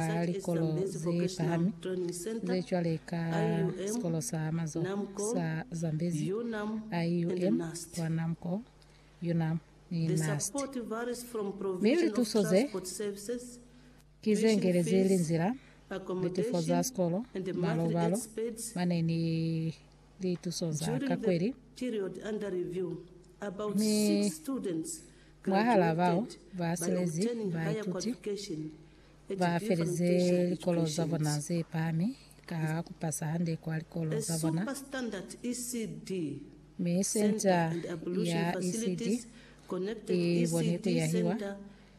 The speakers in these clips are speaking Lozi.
za likolo ze pahami, ze cwale ka Sikolo sa Mazoho sa Zambezi, IUM, kwa Namco, Yunnan, ni NUST. Mi lituso ze, ki ze ngelezi linzila, litefo za sikolo, malo-balo mane ni lituso za ka kweli. Mi mwahal'a bao ba silezi baituti, Ba felize likolo za bona ze pahami ka ku pasa hande kwa likolo za bona, mi Senta ya ECD i boni ku yahiwa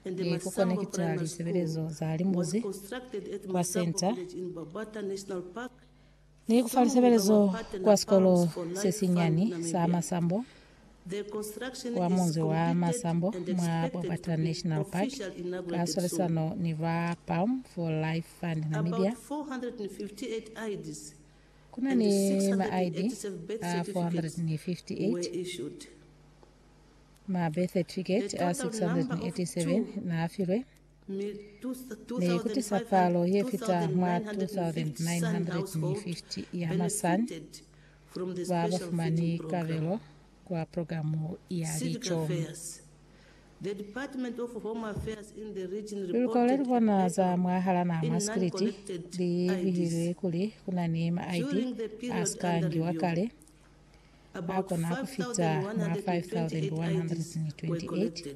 ni ku konekita lisebelezo za limbuzi kwa Senta Ni ku fa lisebelezo kwa sikolo se sinyani sa Masambo kwa munzi wa Masambo mwa Bobata National Park ka swalisano ni ba Balm for Life Fund Namibia. Ku na ni ma ID a 458, ma birth certificate a 687 n'a filwe, Ni kutisa palo ye fita mwa 2,950 ya masan ba ba fumani kabelo kwa programu ya lico. Luluko le lubona za mwahala naha mwa Sikiliti li bihilwe kuli ku na ni ma ID a si ka ngiwa kale a kona ku fita mwa 5,128.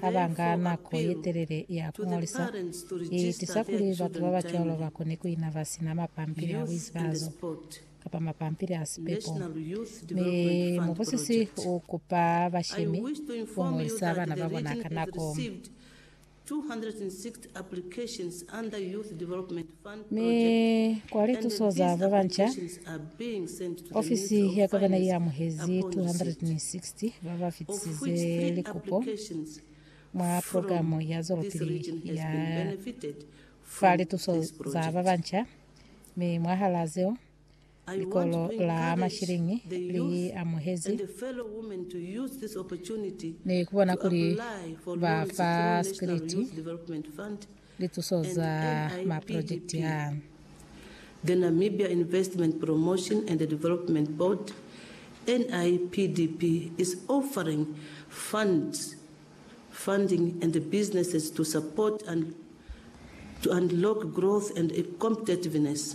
ha ba nga nako ye telele ya ku ñolisa, i tisa kuli batu ba ba cwalo ba kone ku ina ba si na mapampili a buizibazo kapa mapampili a sipepo. Mi mubusisi u kupa bashemi ku ñolisa bana ba bona ka nako. Mi kwa lituso za babanca, ofisi ya gavana i amuhezi 260 ba ba fitisize likupo mwa programe ya zwelopili ya fa lituso za babanca, mi mwahal'a zeo, Likolo la mashiliñi li amuhezi ni ku bona kuli ba fa Sikiliti lituso za maprojekiti a. The Namibia Investment Promotion and Development Board, NIPDB, is offering funds, funding and businesses to support and to unlock growth and competitiveness.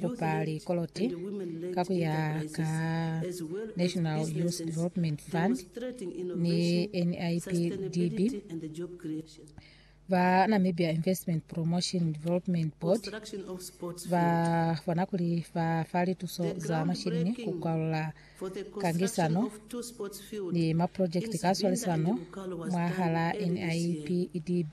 kupa likoloti ka ku ya ka National Youth Development Fund ni NIPDB ba Namibia Investment Promotion Development Board ba bona kuli ba fa lituso za mashilini ku kwalula kangisano ni maprojekti ka swalisano mwahala NIPDB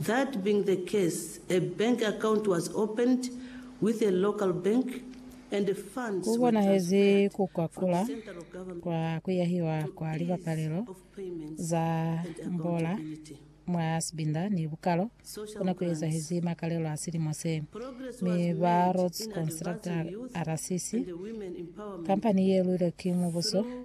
That being the case, a bank account was opened with a local bank and the funds were Kubonahezi transferred ku ka from kula central government kwa kuyahiwa to kwa ease libapalelo of payments za and mbola accountability. mwa Sibinda ni Bukalo Social kuna ku grants. ezahezi makalelo a silimo se, Progress mi was ba made Rhodes in Constructor advancing youth RCC, and women empowerment kampani ye lwilwe ki mubuso, through